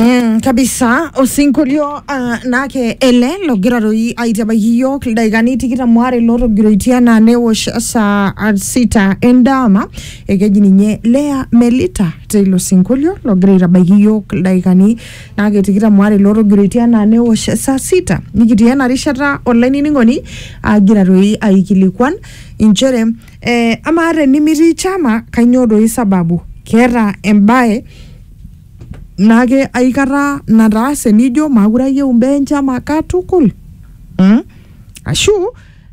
Mm, kabisa osinkolio uh, nake ele logira doi aitiabaki yiok ildaikani tikitam waare lootogiroitia naa newosh saa ah, sita endama ekeji ninye Lea Melita teilo sinkolio logira aitabaiki yiok ildaikani nake tikitam waare lootogiroitia naa newosh saa sita nikitii ena rishata olainining'oni agira doi aikilikuan inchere Eh, amaa tenimitii chama kainyoo doi sababu keeta embae naake aikata nataase nijo maakure ayieu imbaa enchama katukul mm? ashu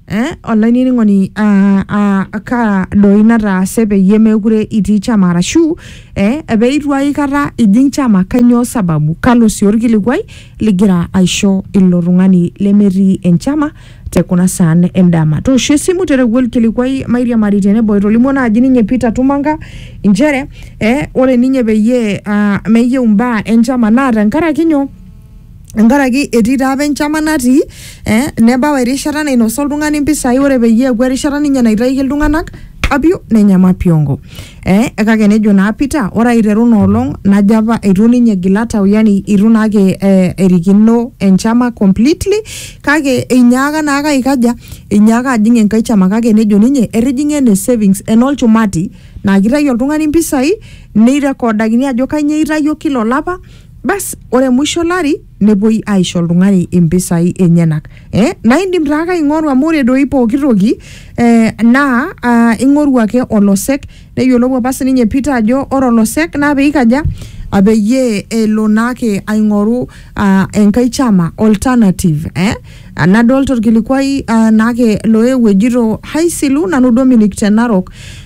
eh, olainining'oni ah, ah, kaa doi nataase peyie meekure itii chama arashu eh, peitu aikata ijing chama kainyoo sababu kalo sii orkilikuai ligira aisho ilo tung'ani lemetii enchama te kuna saan endama. Toosho esimu tereu olkilikuai Mairiamari tenebo etolimuo naaji ninye Peter Tumanga inchere eh, ore ninye peyie ah, meyieu imbaa enchama naa tenkaraki nyoo tenkaraki etii taa apa enchama natii eh, nebau erishata nainosa oltung'ani impisai ore peyie eeku erishata ninye naitayiki iltung'anak apio nenya mapiongo. Eh, kake nejo naa Peter, ore aiteru ina olong najo apa eitu ninye egil atau, yani eitu naake eh, erikino enchama completely, kake einyaaka naake aikaja, einyaaka ajing enkae chama kake nejo ninye etijing'a ene savings enolchumati naa kitayu oltung'ani mpisai neirekodakini ajo kainyoo eitayio kila olapa, bas ore musho olari nepuoi aisho oltung'ani impisai enyenak eh? naa indim taake aing'oru amu ore doi pooki toki eh, naa ah, ing'oru ake olosek neyiolou apa sininye Peter ajo ore olosek naa peikaja ah, peyie elo naake aing'oru ah, enkae chama alternative eh? Ah, nadolta orkilikuai ah, naake loewuo ejito haisilu nanu Dominic te Narok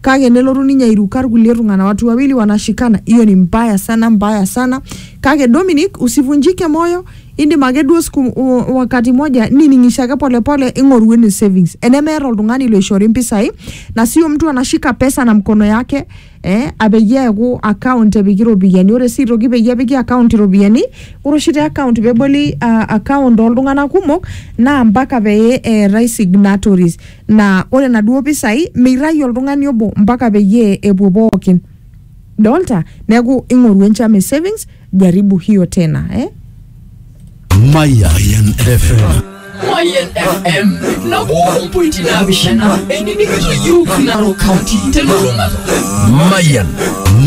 kake nelotu ninye airuka irkulie tung'ana watu wawili wanashikana hiyo ni mbaya sana mbaya sana kake Dominic usivunjike moyo indim ake duo siku u- wakati moja nining'isho ake polepole ing'oru ene savings enemeeta oltung'ani loishori mpisai na sio mtu anashika pesa na mkono yake eh, apeyie eeku account epiki iropiyiani ore sii aitoki peyie epiki account iropiyiani ore oshi te account peboli uh, account oltung'anak kumok naa mpaka pee eetae signatories Naa ore naduoo pisai meirragie oltung'ani obo mpaka peyie epuo pookin. Dolta? Neaku ing'oru enchama e savings, jaribu hiyo tena eh. Mayan FM. Mayan FM nabo ompointi naapishana enining'ito iyiook Narok County telulung'ata. Mayan.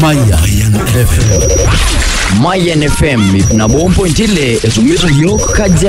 Mayan FM. Mayan FM ip nabo ompointi ile esumita iyiook Kajiado.